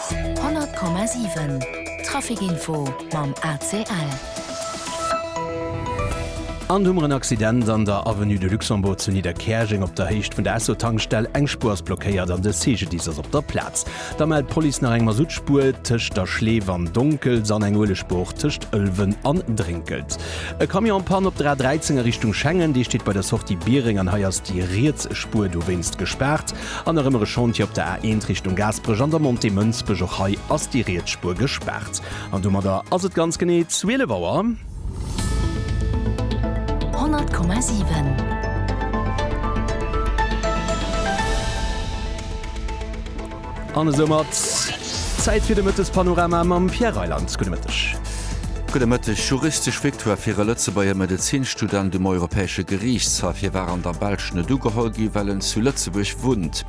100,7 Traficinfo mam ACL. An hu mer en Accident an der Avenue de Luxembourg zu Nidderkäerjeng op der Héicht vun der Esso-Tankstell. Eng Spuer ass blockéiert an de CGDIS ass op der Plaz. Da mellt d'Police nach eng Masutspuer tëscht der Schleef an Donkels an eng Uelegspuer och tëscht Ëlwen an Drénkelt. E Camion en Panne op der A 13 a Richtung Schengen. Dee steet bei der Sortie Biereng an hei ass déi riets Spuer dowéinst gespaart. An nach ëmmer e Chantier op der A1 Richtung Gaasperech an der Montée Mënsbech. Och hei ass déi riets Spuer gespaart. An domadder ass et ganz genee 12 Auer. 100,7. An esoumat Zäit fir de Mëttespanorama mam Pierre Reyland. Gudde Mëtteg. Gudde Mëtteg. Juristesch Victoire fir e Lëtzebuerger Medezinstudent um Europäesche Geriichtshaff. Hie war an der Belsch net ugeholl ginn, well en zu Lëtzebuerg wunnt.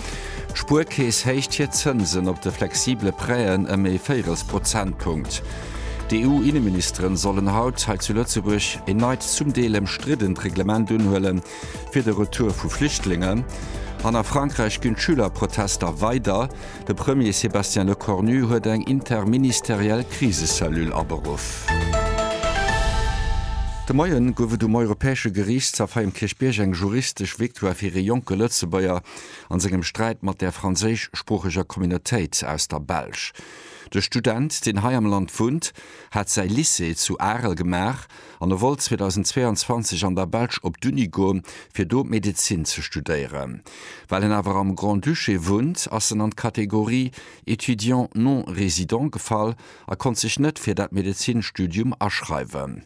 D'Spuerkeess héicht hir Zënsen op de flexibele Prêten ëm ee véirels Prozentpunkt. D'EU-Inneministeren sollen haut hei zu Lëtzebuerg een neit, zum Deel ëmstriddent Reglement unhuele fir de Retour vu Flüchtlingen. An a Frankräich ginn d'Schülerprotester weider. De Premier Sébastien Lecornu huet eng interministeriell Krisecellule aberuff. De Moie gouf et um Europäesche Geriichtshaff hei um Kierchbierg eng juristesch Victoire fir ee jonke Lëtzebuerger a sengem Sträit mat der franséischsproocheger Communautéit aus der Belsch. De Student, deen hei am Land wunnt, hat säi Lycée zu Arel gemaach an e wollt 2022 an der Belsch op d'Uni goen, fir do Medezin ze studéieren. Well en awer am Grand-Duché wunnt, ass en an d'Kategorie étudiant non résident gefall a konnt sech net fir dat Medezinstudium aschreiwen.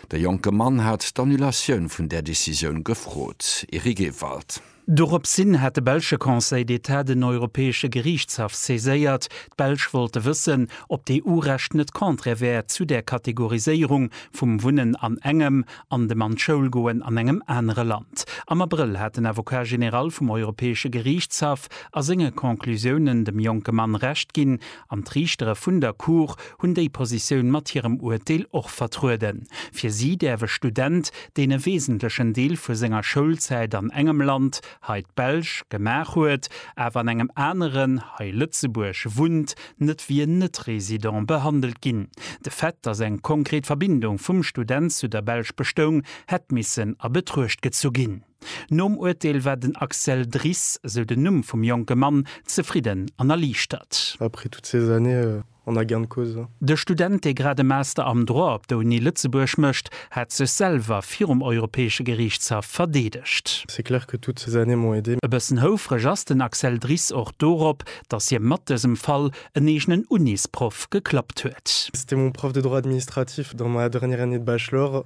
De jonke Mann hat d'Annulatioun vun där Decisioun gefrot. Eric Ewald. Doropshin hat de belsche Conseil d'État den Europäesche Geriichtshaff saiséiert. D'Belsch wollte wëssen, ob d'EU-Recht net contraire wär zu där Kategoriséierung vum Wunnen an engem an dem an d'Schoul goen an engem anere Land. Am Abrëll hat den Avocat général vum Europäesche Geriichtshaff a senge Conclusiounen dem jonke Mann Recht ginn An d'Riichtere vun der Cour hunn déi Positioun mat hirem Urteel och vertrueden. Fir si däerf e Student, deen e wesentlechen Deel vu senger Schoulzäit an engem Land, hei d'Belsch, gemaach huet, awer an engem aneren, hei Lëtzebuerg, wunnt, net wéi en Net-Resident behandelt ginn. De Fait, datt eng konkret Verbindung vum Student zu der Belsch bestoung, hätt missen a Betruecht gezu ginn. Nom Urteel war den Axel Dris, esou den Numm vum jonke Mann, zefridden an erliichtert. Après toutes ces années, on a gain de cause. De Student, dee grad e Master am Droit op der Uni Lëtzebuerg mécht, hat sech selwer virum Europäesche Geriichtshaff verdeedegt. C'est clair que toutes ces années m'ont aidé. E bëssen houfreg ass den Axel Dris och dorop, datt hie mat dësem Fall en eegenen Unisproff geklappt huet. C'était mon prof de droit administratif dans ma dernière année de bachelor,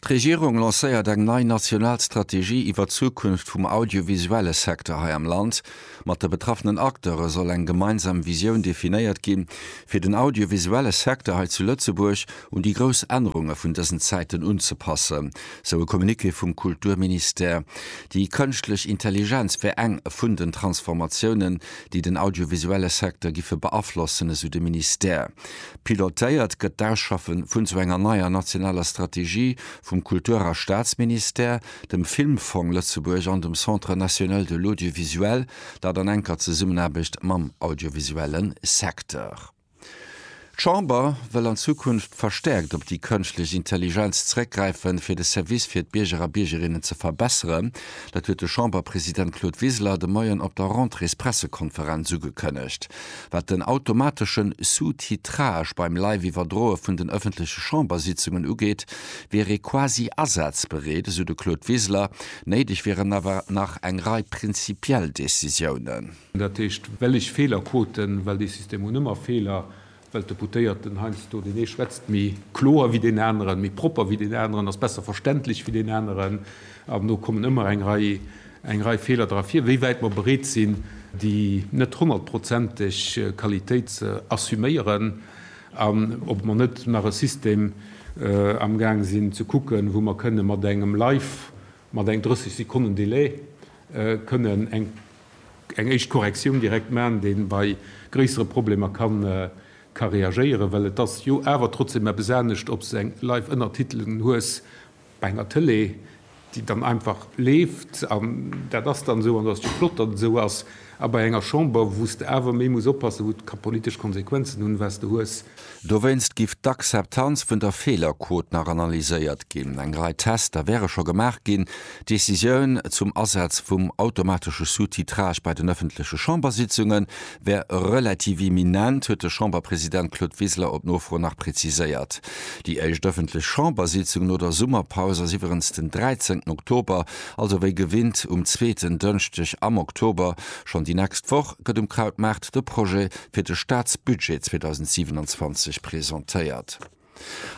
D'Regierung lancéiert eng nei national Strategie iwwer d'Zukunft vum audiovisuelle Secteur hei am Land. Mat de betraffenen Acteure soll eng gemeinsam Visioun definéiert ginn, fir den audiovisuelle Secteur hei zu Lëtzebuerg un déi grouss Ännerunge vun dësen Zäiten unzepassen, sou e Communiqué vum Kulturministère. Déi kënschtlech Intelligenz wär eng vun den Transformatiounen, déi den audiovisuelle Secteur giffe beaflossen, esou de Ministère. Pilotéiert gëtt d'Ausschaffen vun esou enger neier nationaler Strategie vum Kultur a Staatsministère, dem Filmfong Lëtzebuerg an dem Centre national de l'audiovisuel, dat an enker Zesummenaarbecht mam audiovisuelle Secteur. D'Chamber wëll an Zukunft verstäerkt op déi kënschtlech Intelligenz zréckgräifen, fir de Service fir d'Bierger a Biergerinnen ze verbesseren. Dat huet de Chamberpresident Claude Wiseler de Moien op der Rentréespressekonferenz ugekënnegt. Wat den automateschen Sous-titrage beim Live-Iwwerdroe vun den ëffentleche Chambersitzungen ugeet, wier ee quasi asazbereet, esou de Claude Wiseler. Néideg wieren awer nach eng Rei prinzipiell Decisiounen. Dat heescht, well ech Feelerquoten, well dee System hunn ëmmer Feeler, well d'Deputéierten heiansdo, deen ee schwätzt méi kloer wéi deen aneren, méi propper wéi deen aneren, ass besser verständlech wéi deen aneren, an do kommen ëmmer eng Rei eng Rei Feeler dra vir, wéi wäit mer bereet sinn, déi net honnertprozenteg Qualitéit ze assuméieren an ob mer net nach e System amgaang sinn ze kucken, wou mer kënnen mat engem Live, mat eng 30 Sekonnen Delai kënnen eng éischt Korrektioun direkt maachen, dee bei gréissere Problemer ka reagéieren. Well et ass jo awer trotzdem eppes anescht, ob s de eng Live-Ënnertitelung hues Bei enger Tëlee, déi dann einfach leeft an dat ass dann esou an dat ass och flott, datt et esou ass, a bei enger Chamber, wou s de awer méi muss oppassen, wou et ka politesch Konsequenzen hunn, wat s de hues. Dowéinst giff d'Akzeptanz vun der Feelerquot nach analyséiert ginn. Eng Rei Tester wäre scho gemaach ginn. D'Decisioun zum Asaz vum automatesche Sous-titrage bei den ëffentleche Chambersitzungen wär relativ imminent, huet de Chamberpresident Claude Wiseler op Nofro nach preziséiert. Déi éischt ëffentlech Chambersitzung no der Summerpaus ass iwwerens den 13 Oktober, also wéi gewinnt um zweeten Dënschdeg am Oktober. Schonn déi nächst Woch gëtt um Krautmaart de Projet fir de Staatsbudget 2027 presentéiert.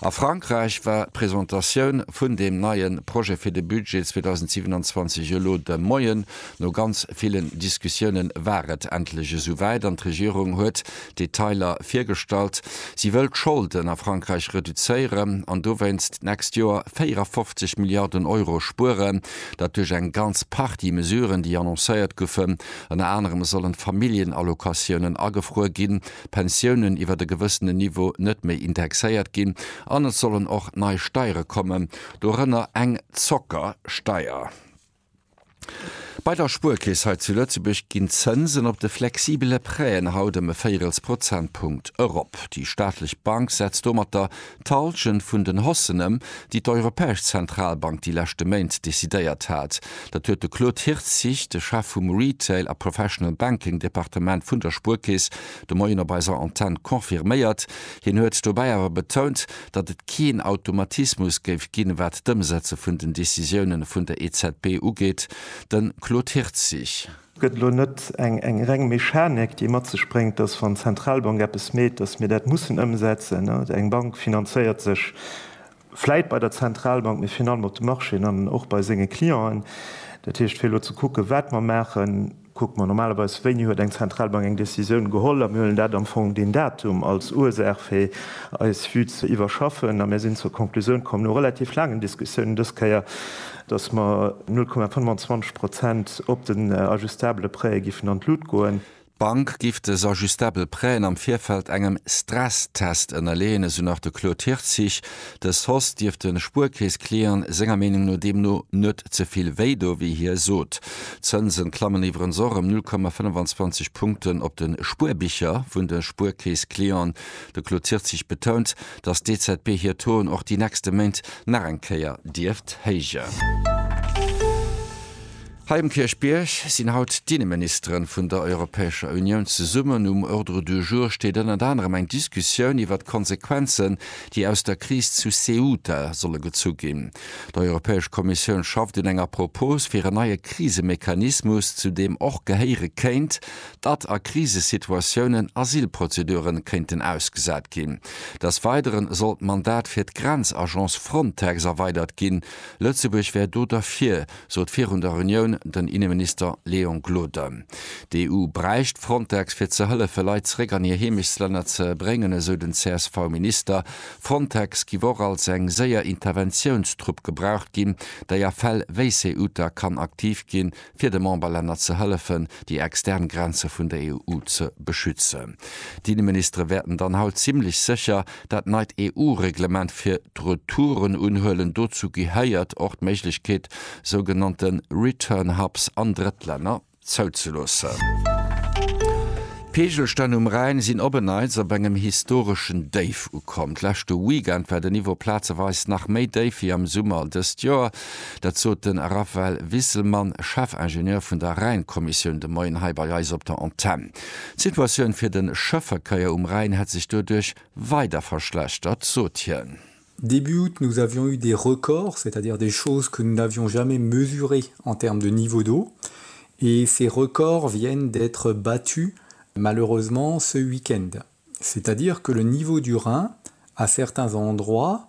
A Frankräich war d'Presentatioun vun deem neie Projet fir de Budget 2027 elo de Moien. No ganz villen Diskussiounen war et endlech esouwäit an d'Regierung huet d'Detailer virgestallt. Si wëll d'Scholden a Frankräich reduzéieren an dowéinst d'nächst Joer 54 Milliarden Euro spueren. Dat duerch eng ganz Partie Mesuren, déi annoncéiert goufen. Ënner anerem sollen d'Familljenallocatiounen agefruer ginn. Pensiounen iwwert e gewëssenen Niveau net méi indexéiert ginn an et sollen och nei Steiere kommen, dorënner eng Zockersteier. Bei der Spuerkeess hei zu Lëtzebuerg ginn d'Zënsen op de flexibele Prêten haut ëm e Véirels Prozentpunkt erop. Déi staatlech Bank setzt domatter D'Halschent vun den Haussenen, déi d'Europäesch Zentralbank déi leschte Méint decidéiert hat, dat huet de Claude Hirtzig, de Chef vum Retail a Professional Banking Departement vun der Spuerkeess, de Moien op eiser Antenn confirméiert. Hien huet dobäi awer betount, datt et keen Automatismus géif ginn, wat d'Ëmsetze vun den Decisiounen vun der EZB ugeet. De Claude Hirtzig. Gëtt elo net eng reng Mechanik, déi mat sech bréngt, dass, wann d'Zentralbank eppes meet, dass mir dat mussen ëmsetzen? Eng Bank finanzéiert sech vläit bei der Zentralbank, mee virun allem op de Marchéen an och bei senge Clienten. Dat heescht, fir elo ze kucken, wat mer maachen, kucke mer normalerweis, wéini huet eng Zentralbank eng Décisioun geholl, a mir huelen dat am Fong, deen Datum, als Ursaach, fir eis Vue ze iwwerschaffen. A mir sinn zur Konklusioun komm, no relativ laangen Diskussiounen dës Kéier, datt mer 0,25 Prozent op den ajustabele Prêtë giffen an d'Lut goen. D'Bank giff des ajustabel Prêtën am Virfeld engem Stresstest ënnerleeën, esou nach de Claude Hirtzig. De sos dierft de Spuerkeess-Client senger Meenung no deemno net ze vill wéi do, wéi hie sot. D'Zënse klammen iwwerens och ëm 0,25 Punkten op de Spuerbicher vun de Spuerkeess-Clienten. De Claude Hirtzig betount, datt d'EZB hir Touen och déi nächste Méint nach eng Kéier dierft héijen. Hei um Kierchbierg sinn haut d'Inneministeren vun der Europäescher Unioun zesummen. Um Ordre du jour steet ënnert anerem eng Diskussioun iwwert d'Konsequenzen, déi aus der Kris zu Ceuta solle gezu ginn. D'Europäesch Kommissioun schafft un enger Propos fir en neie Krisemechanismus, zu deem och gehéiere kéint, datt a Krisesituatiounen Asylprozedure kéinten ausgesat ginn. Des Weidere soll d'Mandat fir d'Grenzagence Frontex erweidert ginn. Lëtzebuerg wär do derfir, sot virun der Reunioun den Inneminister Léon Gloden. D'EU bräicht Frontex fir ze hëllefe Leit zeréck an hir Heemechtslänner ze bréngen, esou den CSV-Minister. Frontex giff och als eng séier Interventiounstrupp gebraucht ginn, déi a Fäll wéi Ceuta kann aktiv ginn, fir de Memberlänner ze hëllefen, déi extern Grenze vun der EU ze beschützen. D'Inneministere wäerten dann haut zimmlech sécher dat neit EU-Reglement fir d'Retouren unhuelen. Dozou gehéiert och d'Méiglechkeet, sougenannte Return Hubs an Drëttlänner zouzeloossen. D'Peegelstänn um Rhäin sinn op e Neits op engem historeschen Déif ukomm. D'leschte Weekend war de Niveau plazeweis nach méi déif wéi am Summer dëst Joer. Dat sot de Raphaël Wisselmann, Chefingenieur vun der Rhäin-Kommissioun de Moien hei bei eis op der Antenn. D'Situatioun fir de Schëffverkéier um Rhäin hätt sech doduerch weider verschlechtert, sot hien. Début août, nous avions eu des records, c'est-à-dire des choses que nous n'avions jamais mesurées en termes de niveau d'eau, et ces records viennent d'être battus malheureusement ce week-end. C'est-à-dire que le niveau du Rhin, à certains endroits,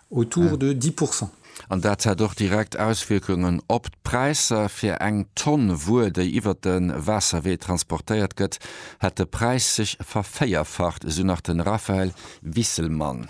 autour de 10 pourcent. An dat hätt och direkt Auswierkungen op d'Präisser. Fir eng Tonn Wuer, déi iwwert de Waasserwee transportéiert gëtt, hätt de Präis sech vervéierfacht, esou nach de Raphaël Wisselmann.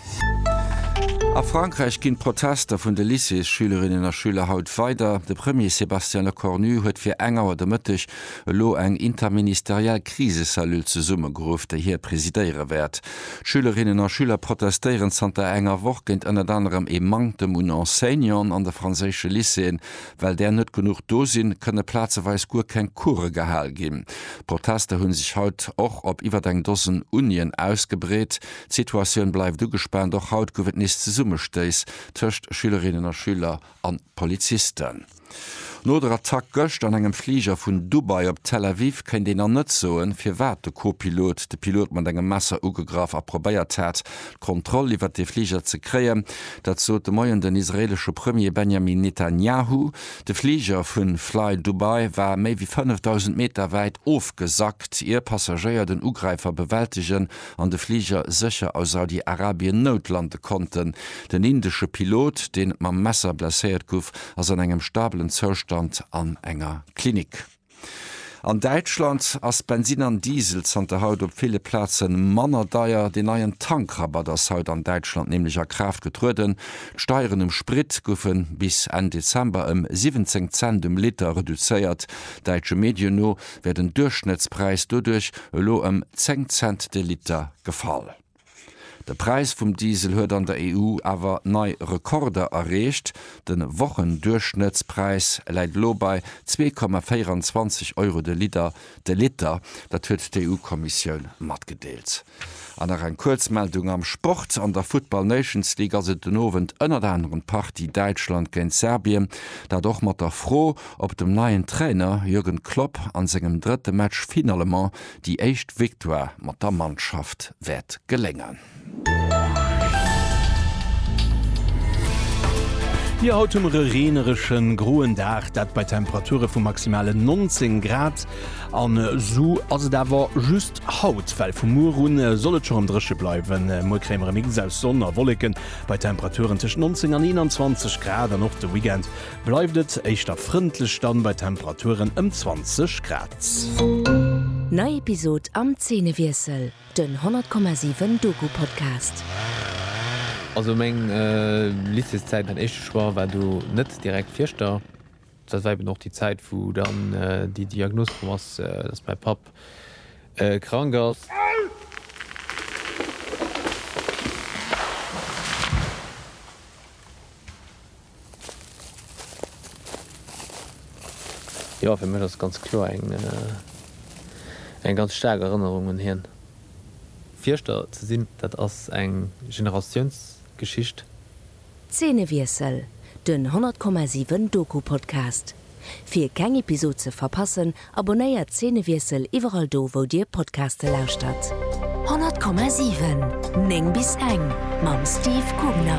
A Frankräich ginn d'Protester vun de Lycéesschülerinnen a schüler haut weider. De Premier Sébastien Lecornu huet fir eng Auer de Mëtteg elo eng interministeriell Krisecellule zesummegeruff, déi hie presidéiere wäert. D'Schülerinnen a Schüler protestéieren zanter enger Woch géint ënnert anerem ee Manktem un Enseignanten an de franséische Lycéeën. Well där net genuch do sinn, kënne plazeweis guer keng Coure gehal ginn. D'Protester hu sech haut och op iwwert eng Dosen Unien ausgebreet. D'Situatioun bleift ugespaant, och haut gouf et nees Zesummestéiss tëscht Schülerinnen a Schüler an Polizisten. No der Attack gëscht an engem Fliger vun Dubai op Tel Aviv kéint een an net soen, firwat de Co-Pilot de Pilot mat engem Messer ugegraff a probéiert hat, d'Kontroll iwwert dee Fliger ze kréien. Dat sot de Moien den israeelesche Premier Benjamin Netanjahu. De Fliger vu Fly Dubai war méi wéi 5.000 Meter wäit ofgesackt, ier Passagéier den Ugräifer bewältegen an de Fliger sécher a Saudi-Arabien noutlande konnten. Den indesche Pilot, deen mam Messer blesséiert gouf, ass an engem stabelen Zoustand an enger Klinik. An Däitschland ass Bensin an Diesel zanter haut op ville Plaze manner deier. Deen neien Tankrabatt ass haut an Däitschland nämlech a Kraaft getrueden. D'Steieren um Sprit goufe bis Enn Dezember ëm 17 Cent um Liter reduzéiert. Däitsche Medien no wär den Duerchschnëttspräis doduerch elo ëm 10 Cent de Liter gefall. De Präis vum Diesel huet an der EU awer nei Rekorder erreecht. De Wochenduerchschnëttspräis läit elo bei 2,24 Euro de Liter de Liter. Dat huet d'EU-Kommissioun matgedeelt. An nach eng Kuerzmeldung am Sport, An der Football Nations League ass et den Owend ënnert anerem d'Partie Däitschland géint Serbien. Dat och mat der Fro, ob dem neien Trainer Jürgen Klopp an sengem drëtte Match finalement déi éischt Victoire mat der Mannschaft wäert geléngen. Jo haut hu mer e reenereschen, groen Dag, dat bei Temperature vu maximalen 19 Grad. An esou ass et awer just haut, well vu muer un soll et scho rem dréche bleiwen. Muer kréie mer e Mix aus Sonn a Wolleken bei Temperaturen tëscht 19 an 21 Grad an och de Weekend Bleift et éischter frëndlech dann bei Temperaturen ëm 20 Grad. Nei Episod am Zeenewiessel, den 100,7 Doku-Podcast. Also meng Lycéeszäit, mäin éischte Choix war do net direkt Fierschter. Dat war eben och déi Zäit, wou dann déi Diagnos komm ass, dass mäi Papp krank ass. Jo, fir mech ass et ganz kloer eng eng ganz staark Erënnerung un hien. Fierschter ze sinn, dat ass eng Generatiounsgeschicht. Zeenewiessel, den 100,7 Doku-Podcast. Fir keng Episod ze verpassen, abonnéiert Szenewiessel iwwerall do wou dir Podcaste lauschtert. 100,7 9 bis eng mam Steve Gubner.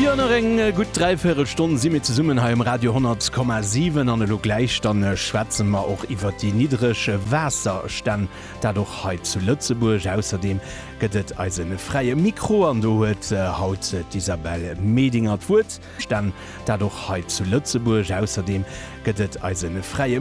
Jo nach eng gutt dräivéirel Stonn si mir zesummen hei um Radio 100,7 an elo gläich dann schwätze mer och iwwert déi niddreg Waasserstänn, dat och hei zu Lëtzebuerg. Ausserdeem gëtt et eise fräie Mikro an do huet haut d'Isabelle Medinger d'Wuert. Stänn, dat och hei zu Lëtzebuerg. Ausserdeem gëtt et eise fräie.